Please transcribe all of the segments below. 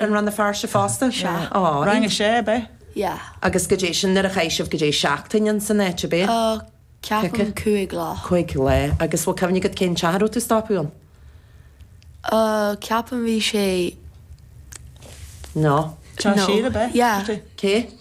An Rann na Feirste fosta? Sea. Ámh. Rang a sé ab ea? Yeah. Agus goidé sin, nuair a chaith sibh goidé seachtain ins an áit ab ea? Oh, ceapaim cúig lá. Cúig lá. Agus bhfuil cuimhne agat cén teach a raibh tú ag stopadh ann? Oh, ceapaim bhí sé, No. Teach no. Siar ab ea? Yeah. Cé?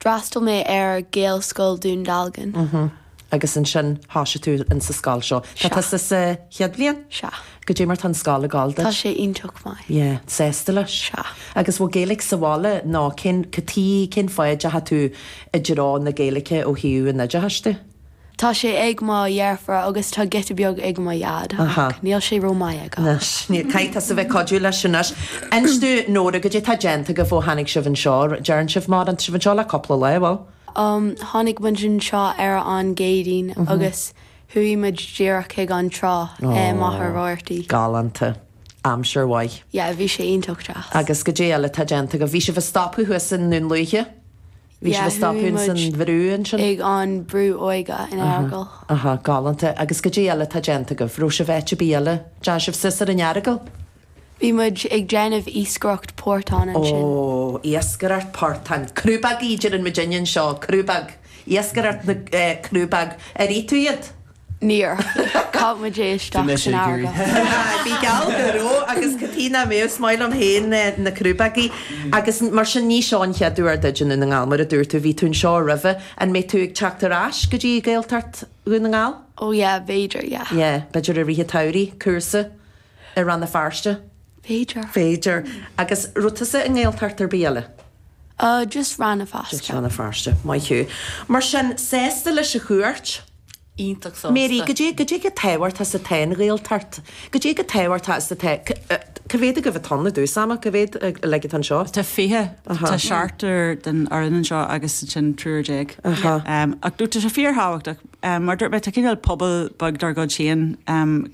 D'fhreastail mé ar Ghaelscoil Dún Dealgan. Uh-huh. Agus ansin thosaigh tú in sa scoil seo. Tá Sea. tusa sa chéad bhliain? Sea. Goidé mar tá an scoil ag gabháil duit? Tá sé iontach maith. Yeah. Sásta leis? Sea. Agus bhfuil Gaeilge sa bhaile nó cén, goidé cén fáth a dteachaigh tú i dtreo na Gaeilge ó thaobh an oideachais de? Tá sé ag mo dheirfiúr agus tá giota beag ag mo dhaid ach níl sé ró maith aige. Anois, bhuel caithfidh tusa bheith ag cuidiú leis anois. Inis dúinn, Nóra, goidé tá déanta agaibh ó tháinig sibh anseo? Deireann sibh má tá sibh anseo le cúpla lá, bhuel? Um, tháinig muid anseo ar an gCéadaoin agus chuaigh muid díreach chuig an trá i Machaire Rabhartaí. Galánta. Aimsir mhaith. Yeah, bhí sé iontach deas. Agus goidé eile atá déanta agaibh? Bhí sibh ag stopadh thuas i nDún Lúiche? Bhí sibh ag stopadh ins an bhrú ansin? Ag an brú óige in Earagail. Aha, galánta. Agus goidé eile atá déanta agaibh? Raibh sibh áit ar bith eile? Dteachaigh sibh suas ar an Earagail? Bhí muid ag déanamh iascaireacht portán ansin. Ó, iascaireacht portán. Crúbóg a deireann muidinne anseo, crúbóg. Iascaireacht na, eh, crúbóg. Ar ith tú iad? Níor. Chaith muid é isteach san fharraige. Bhí mé ag iarraidh. Aye, bíodh geall go raibh agus cad chuige nach mbeadh, is maith liom féin na crúbógaí agus mar sin ní seo an chéad uair duid i nDún na nGall, mar a dúirt tú, bhí tú anseo roimhe, an mbeidh tú ag teacht ar ais go dtí Gaeltacht Dhún na nGall? Oh yeah, b'fhéidir, yeah. Yeah, b'fhéidir i rith an tsamhraidh, cúrsa i Rann na Feirste? B'fhéidir. B'fhéidir. Agus raibh tusa i nGaeltacht ar bith eile? Oh, just Rann na Feirste. Just Rann na Feirste, maith thú. Mar sin, sásta leis an chuairt? iontach sásta. Mary, Goidé, goidé chomh tábhachtach is atá an Ghaeltacht. Goidé chomh tábhachtach is atá, cá mhéad agaibh atá ann i dtús ama, cá mhéad like atá anseo? Tá fiche, tá seachtar den fhoireann anseo agus ansin triúr déag. Ach no tá sé fíor thábhachtach. Mar dúirt mé, tá cineál pobal beag dár gcuid féin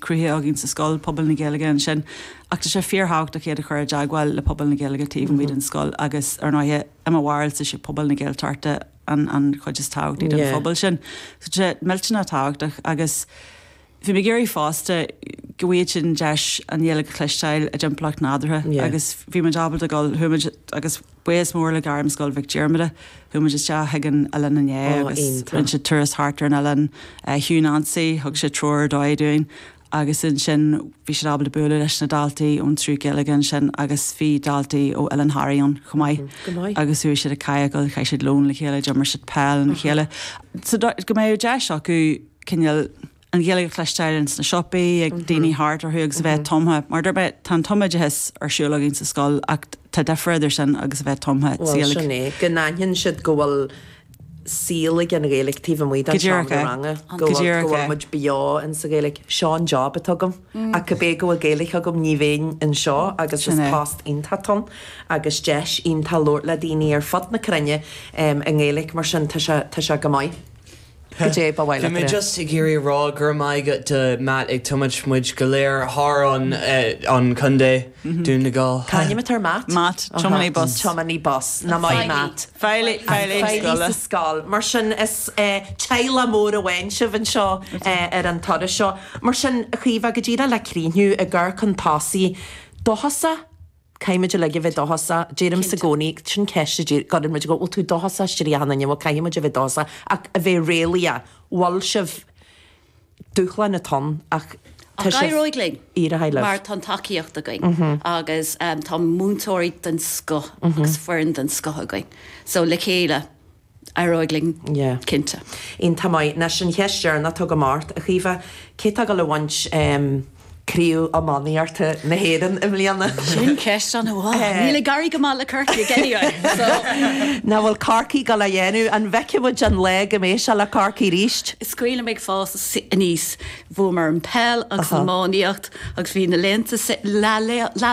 cruthaithe againn sa scoil, pobal na Gaeilge ansin. Ach tá sé fíor thábhachtach iad a chur i dteagmháil le pobal na Gaeilge taobh amuigh den scoil agus ar ndóighe, i mo bharúil is é pobal na Gaeltachta, an chuid is tábhachtaí den phobal sin. Tá sé millteanach tábhachtach agus bhí mé ag iarraidh fosta go bhfaigheadh siad an deis an Ghaeilge a chloisteáil i dtimpeallacht nádúrtha agus bhí muid ábalta dul, chuaigh muid, agus buíochas mór le Gairmscoil Mhic Dhiarmada, chuaigh muid isteach chuig an oileán inné agus rinne siad turas thart ar an oileán, Hugh Nancy, thug sé treoir ar dóigh dúinn agus ansin bhí siad ábalta bualadh leis na daltaí ón tSruth Gaeilge ansin agus bhí daltaí ó Oileán Thoraí ann chomh maith agus chuaigh siad ag kayakáil, chaith siad lón le chéile, d'imir siad peil lena chéile so go mbeadh deis acu cineál an Ghaeilge a chloisteáil ins na siopaí, ag daoine thart orthu agus a bheith tumtha, mar, tá an tumoideachas ar siúl againn sa scoil ach tá difear idir sin agus a bheith tumtha sa Ghaeilge. Bhuel sin é, go n-aithin siad go bhfuil saol ag an Ghaeilge taobh amuigh den seomra ranga, go bhfuil muid beo in sa Ghaeilge. Seo an job atá agam, ach cibé go bhfuil Gaeilge agam ní bheinn anseo agus is post iontach atá ann agus deis iontach labhairt le daoine ar fud na cruinne i nGaeilge mar sin tá sé tá sé go maith. Cibé, ba mhaith liom Bhí mé just ag iarraidh a rá go raibh maith agat do Matt ag tiomaint muid go léir thart an chontae. Donegal. Cainnímeatar mat. Mat, tiománaí bus. Tiománaí bus. Maith Matt. Feighlí, feighlí ag scoil. Feighlí sa scoil. Mar sin, is teaghlach mór amháin sibh anseo ar an turas seo. Mar sin, a Chaoimhe, go díreach le críochnú, i gcur chun tosaigh, dóchasach? Caithfimid uilig a bheith dóchasach. Deirimse i gcónaí, sin ceist, d'iarr, go raibh muid, go bhfuil tú dóchasach, Stiofán, an bhfuil? Caithfimid a bheith dóchasach, ach a bheith réalaíoch. Bhfuil sibh? Dúshláin atá ann ach tá Ach sibh éireoidh linn ar aghaidh libh. mar tá an tacaíocht againn agus tá múinteoirí den scoth agus foireann den scoth againn. So le chéile, éireoidh linn Yeah. cinnte. Aontaím. Anois an cheist dheireanach agam ort, a Chaoimhe, cé tá ag gabháil a bhaint? Craobh iománaíochta na hÉireann i mbliana. Sin ceist an fhuath. Níl ag éirí go maith le Corcaigh anyway, so. Nó an bhfuil Corcaigh ag gabháil a dhéanamh? An bhfeicfidh muid an lá go mbeidh sé le Corcaigh arís? Is cuimhin liom ag fás aníos. Bhuamar an peil agus an iománaíocht agus bhí na laethanta